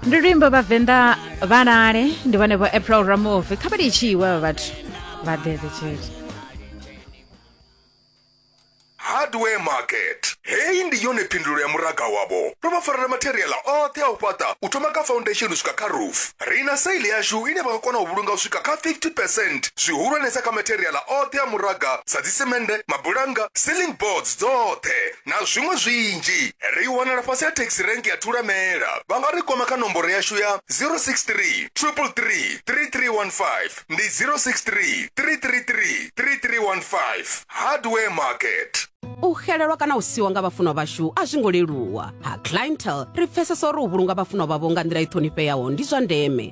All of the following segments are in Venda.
ndi luimbo vhavenḓa vhalale ndi vhone vho april ramovi kha vha litshiwe vha vhathu vha ḓedze tshele hardware market heyi ndi yone phindulo ya muraga wavho ro vha farela matheriala oṱhe a u fhaṱa u thoma kha foundation u swika kha roof ri na saili yashu ine vha nga kona u vhulunga u swika kha 50 percent zwihulwanesa kha matheriala oṱhe a muraga sa dzisemende mabulanga ceiling boards dzoṱhe na zwiṅwe zwinzhi. Ri wanala fhasi ha Taxi Rank ya Thulamela. Vha nga ri kwama kha nomboro yashu ya 063 333 3315 ndi 063 333 3315. Hardware Market. u xelelwa kana u siwa nga vhafunwa vhashu a zwi ngo leluwa ha clientel ri pfesesa uri u vhulunga vhafunwa vhavho nga nḓila i ṱhonifheaho ndi zwa ndeme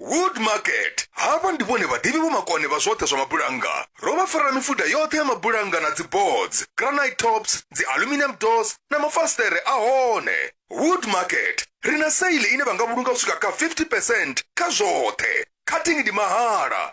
Wood Market havha ndi vhone vhadivhi vhomakone vha zwoṱhe zwa mabulannga ro vha farela mifuda yoṱhe ya mabulannga na dziboards granite tops dzi aluminium doors na mafasiṱere a hone Wood Market ri na seile ine vha nga vhulunga u swika kha 50 percent kha zwoṱhe cutting ndi mahala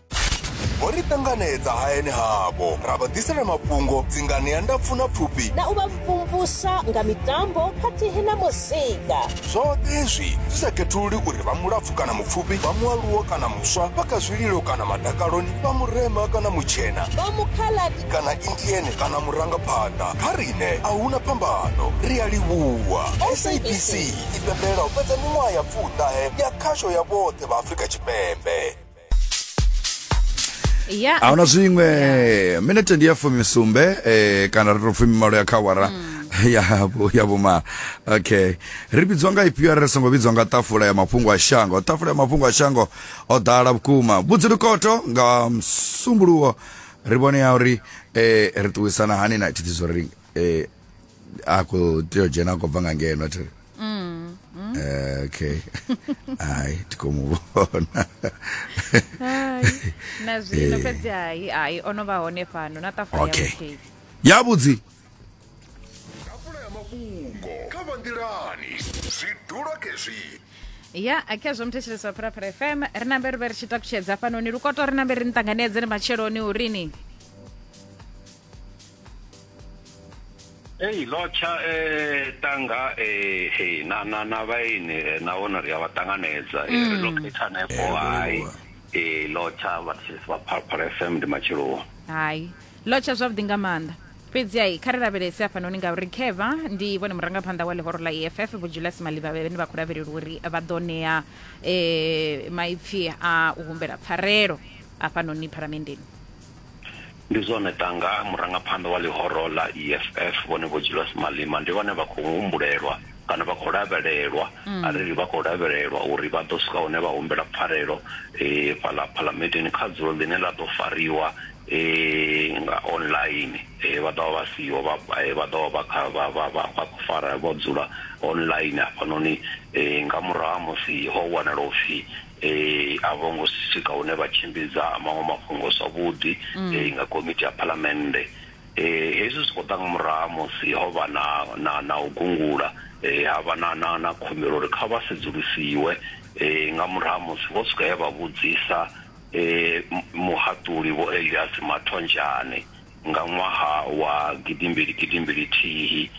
vho ri ṱanganedza hayani havho ra vha ḓisela mafhungo dzingani ya ndapfu na pfufhi na u vha mvumvusa nga mitambo khathihi na muzika zwoṱhe hezwi zwi sa khethululi uri vha mulapfu kana mupfufhi vha mualuwo kana muswa vha kha zwililo kana madakaloni vha murema kana mutshena vha mukhaladi kana indiene kana murangaphanḓa kha rine a huna phambano ri a livhuwa sabc i pembelela u fhedza miṅwaha ya pfuṱahe ya khasho ya vhoṱhe vha afrika tshipembe ya a huna zwiṅwe minete ndi ya fumisumbe eh, kana ri to fumi malo ya khawara ya vhu- ya vhumalo okay ri vhidzwa nga ifhio arali ri songo vhidzwa nga tafula ya mafhungo a shango tafula ya mafhungo a shango o ḓala vhukuma vhudzi lukoto nga msumbuluwo ri vhone ya uri eh, ri ṱuwisana hani na tshithizo ri eh, a khou tea u dzhena a khou bva nga ngeno thi mm, mm. Eh, okay hayi ti khou mu vhona na zwino eh. fhedzi hayi hayi o no vha hone fhano na ṱafula ya vhuthihi ya vhudzi ṱafula ya mafhungo kha vha nḓilani zwi dula kezwi ya akhezvo muthetshelesi wa phuraphura fm ri nambe ri vhe ri tshi takutshedza fhanoni lukoto ri nambe ri ni ṱanganedze ni matsheloni urini Ei lotsha eh tanga eh hey na na na vhaini eh, na vhona ri a vha ṱanganedza eh, ri mm. locate hanefho hai eh lotsha vhathetshelesi vha phalaphala fm ndi matsheloni hai lotsha zwavhuḓi nga maanḓa fhedzi ai kha ri lavhelese hafhanoni ngauri kheva ndi vhone murangaphanḓa wa ḽihoro ḽa eff vhojulasi maliva vhene vha khou lavhelelwa uri vha ḓo ṋea um maipfhi a u humbela pfarelo hafhanoni phalamendeni Ndi zwone Tanga, murangaphanḓa wa ḽihoro ḽa EFF Vhone Vho Julius Malema ndi vhane vha khou humbulelwa kana vha khou lavhelelwa a ri ri vha khou lavhelelwa uri vha ḓo swika hune vha humbela pfarelo fhaḽa phalamenndeni kha dzulo ḽine ḽa ḓo fariwa nga online vha ḓovha vha siho vha vha ḓovha vha kha vha vha vha vha khou fara vho dzula online hafhanoni nga murahu ha musi ho wanala upfhi a vho ngo swika hune vha tshimbidza maṅwe mafhungo zwavhuḓi nga komiti ya phalamennde. Hezwi zwi khou ḓa nga murahu ha musi ho vha na na na u gungula ha vha na na na khumbelo uri kha vha sedzulusiwe nga murahu ha musi vho swika he vha vhudzisa muhaṱuli Vho Elias Mathonjane nga ṅwaha wa gidimbili gidimbili thihi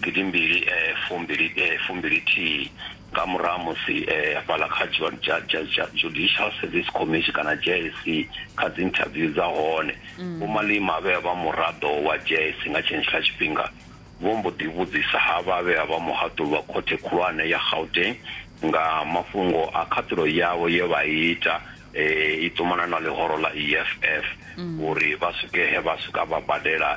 gidimbili fumbili fumbili thihi nga murahu ha musi hafhaḽa kha Judicial Service Commission kana JSC kha dzi interview dza hone Vho Malema vhe vha vha muraḓo wa JSC nga tshenetshiḽa tshifhinga. vho mbo ḓi vhudzisa havha vhe vha vha muhaṱuli wa Khothe Khulwane ya Gauteng nga mafhungo a khaṱulo yavho ye vha i ita i ṱumana na ḽihoro ḽa EFF uri vha swike he vha swika vha badela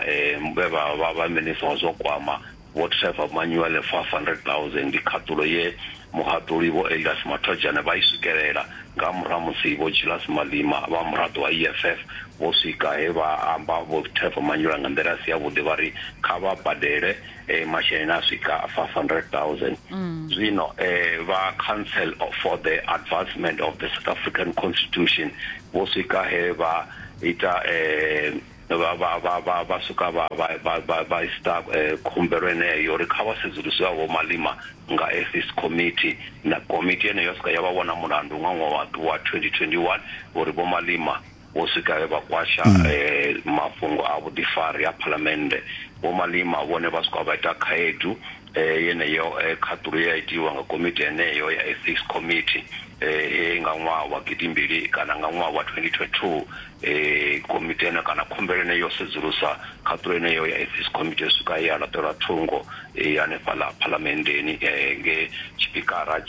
vhe vha vha vha minisiṱa wa zwa u kwama Vho Trevor Manuel 500000 khaṱulo ye Muhaṱuli Vho Elias Mathojane vha i swikelela nga murahu ha musi Vho Julius Malima vha muraḓo wa EFF vho swika he vha amba Vho Trevor Manyula nga nḓila i si yavhuḓi vha ri kha vha badele masheleni a swika 500000. Zwino vha Council for the Advancement of the South African Constitution vho swika he vha ita vha vha vha vha vha swika vha vha vha vha ista eh, khumbelo eneyo uri kha vha sedzuluswe vho malima nga ethics committee na komiti yeneyo ya swika ya vha vhona mulandu nga ṅwaha wa wa 2021 uri vho malima vho swika vhe vha kwasha eh, mafhungo a vhuḓifari a phalamennde vho malima vhone vha swika vha ita khaedu eh, yeneyo eh, khaṱulo ya itiwa nga komiti yeneyo ya ethics committee eh, he nga ṅwaha wa gidimbili kana nga ṅwaha wa 2022 Komiti ene kana khumbelo ine yo sedzulusa khaṱhulo yeneyo ya Ethics Committee u swika he ya laṱelwa thungo hanefhaḽa Phalamenndeni nge tshipikara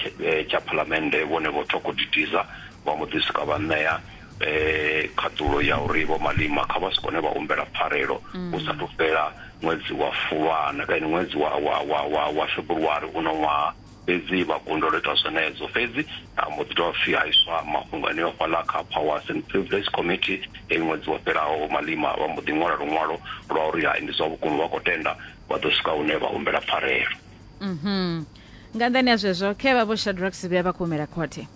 tsha Phalamennde vhone Vho Thoko Didiza vha mbo ḓi swika vha ṋea khaṱhulo ya uri Vho Malema kha vha si kone vha humbela pfarelo hu sathu fhela ṅwedzi wa Fulwana kana ṅwedzi wa February uno ṅwaha. fhedzi vha kundelwa u ita zwenezwo. Fhedzi ha mbo ḓi dovha futhi ha iswa mafhungo eneo fhaḽa kha Powers and Privilege Committee ngei ṅwedzi wo fhelaho. Vho Malema vha mbo ḓi ṅwala luṅwalo lwa uri hai ndi zwa vhukuma vha khou tenda vha ḓo swika hune vha humbela pfarelo. Mhm. Nga nnḓani ha zwezwo, khe vha Vho Shadrack Sibiya vha khou humela khothe.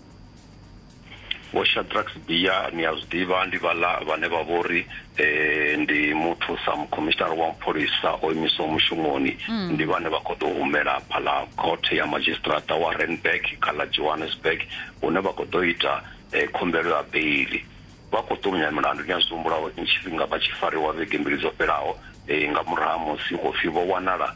vho shadrax bia ni a zwi ḓivha ndi vhala vhane vha vho ri um ndi muthu sa mukhomishinara wa mapholisa o imiswa mushumoni mm. ndi vhane vha khou ḓo humela phala khothe ya madzhisiṱiraṱa wa renberg kha ḽa johannesburg hune vha khou ḓo ita um khumbelo ya beili vha khou ṱumunya milandu ni a zwi humbulaho tshifhinga vha tshi fariwa vhege mbili dzo fhelaho um nga murahu ha musi khou pfhi vho wanala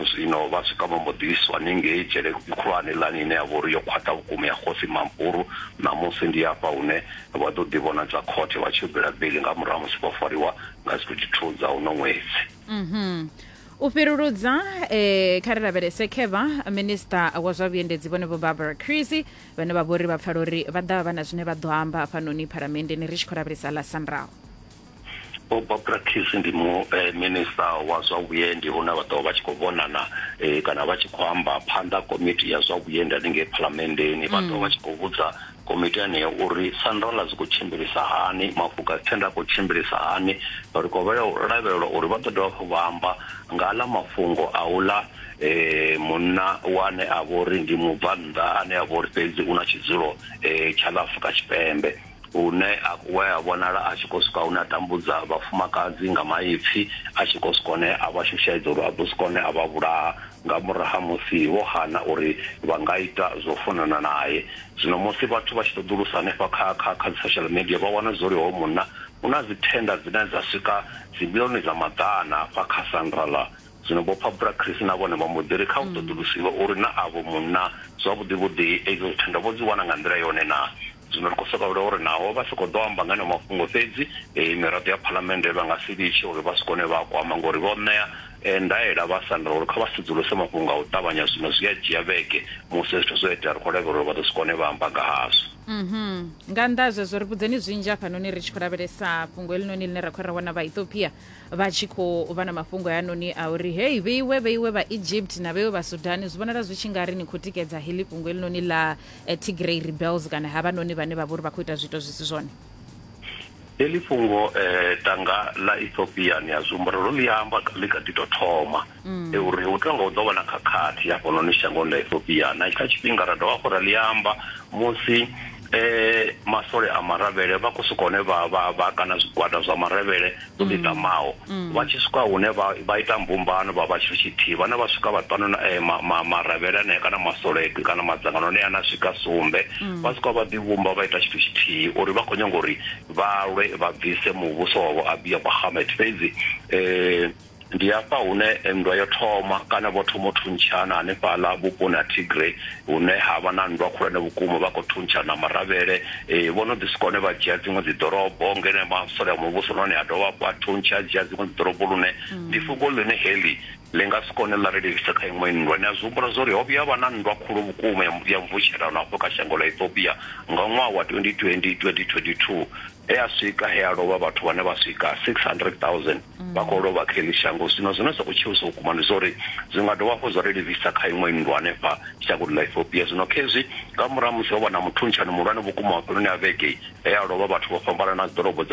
Zwino vha swika vha mbo ḓi iswa ningei dzhele khulwane lani ine ya vha uri yo khwaṱha vhukuma ya Khosi Mampuru. Ṋamusi ndi hafha hune vha ḓo ḓivhonadza khothe vha tshi yo bela beiḽi nga murahu ha musi vho fariwa nga dzi 22 dza uno ṅwedzi. U fhiruludza kha ri lavhelese khevha, Minisiṱa wa zwa Vhuendedzi Vhone Vho Barbara Creecy vhane vha vha uri vha pfala uri vha ḓa vha na zwine vha ḓo amba hafhanoni Phalamenndeni ri tshi khou lavhelesa ḽa Sanral. Vho Bob Rakhisi ndi mu eh, minista wa zwa vhuendi hune vha ḓovha vha tshi khou vhonana eh, kana vha tshi khou amba phanḓa komiti ya zwa vhuendi haningei phalamenndeni vha ḓovha vha tshi khou vhudza komiti yeneyo uri sandola dzi khou tshimbilisa hani mafuka thenda a khou tshimbilisa hani ri khou lavhelelwa uri vha ḓo dovha hafhu vha amba nga aḽa mafhungo a uḽa eh, munna wane a vha uri ndi mubvannḓa ane a vha uri fhedzi u na tshidzulo eh, tsha ḽa afrika tshipembe hune a, we a vhonala a tshi khou swika hune a tambudza vhafumakadzi nga maipfi a tshi khou swika hone a vha shushaedza uri a ḓo swika hone a vha vhulaha nga murahu ha musi vho hana uri vha nga ita zwo funana nae zwino musi vhathu vha tshi ṱoḓulusa hanefha kha kha kha dzi social media vha wana zwo ri hoyo munna u na dzi thenda dzine dza swika dzimbilioni dza maḓana hafha kha sandra la zwino vho phabura chris na vhone vha mbo ḓi ri kha u ṱoḓulusiwe uri na avho munna zwavhuḓi vhuḓi edzo thenda vho dzi wana nga nḓila yone na Zwino ri khou sokou vhila uri naho vha si khou ḓo amba nga eneo mafhungo fhedzi, miraḓo ya Phalamennde vha nga si litshe uri vha swike hune vha a kwama nga uri vho ṋea ndaela vha Sandra uri kha vha sedzuluse mafhungo nga u ṱavhanya zwino zwi a dzhia vhege musi hezwi zwithu zwo itea ri khou lavhelela uri vha ḓo swika hune vha amba nga hazwo. Nga nnḓa ha zwezwo, ri vhudzeni zwinzhi hafhanoni ri tshi khou lavhelesa fhungo heḽinoni ḽine ra khou ra wana Vhaethiopia vha tshi khou vha na mafhungo hayanoni a uri, Hei, vheiwe, vheiwe Vhaegypt na vheiwe Vhasudani, zwi vhonala zwi tshi nga ri ni khou tikedza heḽi fhungo heḽinoni ḽa eh, Tigray rebels kana havhanoni vhane vha vhori vha khou ita zwiito zwi si zwone heḽi fhungo eh tanga ḽa Ethiopia ni a zwumba ro ḽi amba ḽi kha ḓi to thoma mm. e uri hu tonga hu ḓo vha na khakhathi ya fhano ni shangoni ḽa Ethiopia na kha tshifhinga ra dovha hafhu ra ḽi amba musi eh masole a maravhele vha khou sokou hone vha vha vha kana zwigwada zwa maravhele dzo ḓi tamaho vha tshi swika hune vha ita mbumbano vha vha tshithu tshithihi vhane vha swika vhaṱanu eh, maravhele anea kana masoledu kana madzangano anea ana swika sumbe vha swika vha ḓivhumba vha ita tshithu tshithihi uri vha khou nyanga uri vha lwe vha bvise muvhuso wavho abiya bahamet fhedzi um Ndi hafha hune nndwa yo thoma, kana vho thoma u thuntshana hanefhaḽa vhuponi ha Tigray hune ha vha na nndwa khulwane vhukuma. Vha khou thuntshana na Maravhele. Vho no ḓi swika hune vha dzhia dziṅwe dzi ḓorobo ngeno masole a muvhuso nahone a dovha hafhu a thuntsha a dzhia dziṅwe dzi ḓorobo lune ndi fhungo ḽine heḽi ḽi nga si kone ḽa ri livhisa kha iṅwe nndwa. Ni a zwi humbula zwa uri ho vhuya ha vha na nndwa khulu vhukuma ya ya mvutshelano hafho kha shango ḽa Ethiopia nga ṅwaha wa 2020, 2022 he ha swika he ha lovha vhathu vhane vha swika 600,000. mm. vha khou lovha kha ḽi shango zwino zwine zwa khou tshiwisa vhukuma ndi zwori zwi nga dovha hafhu zwa ri livhisa kha iṅwe nndwa hanefha shangoni ḽa ethiopia zwino khezwi nga murahu musi ho vha na muthuntsha ni muhulwane vhukuma mafheloni a vhege he a lovha vhathu vho fhambanana dzi ḓorobo dza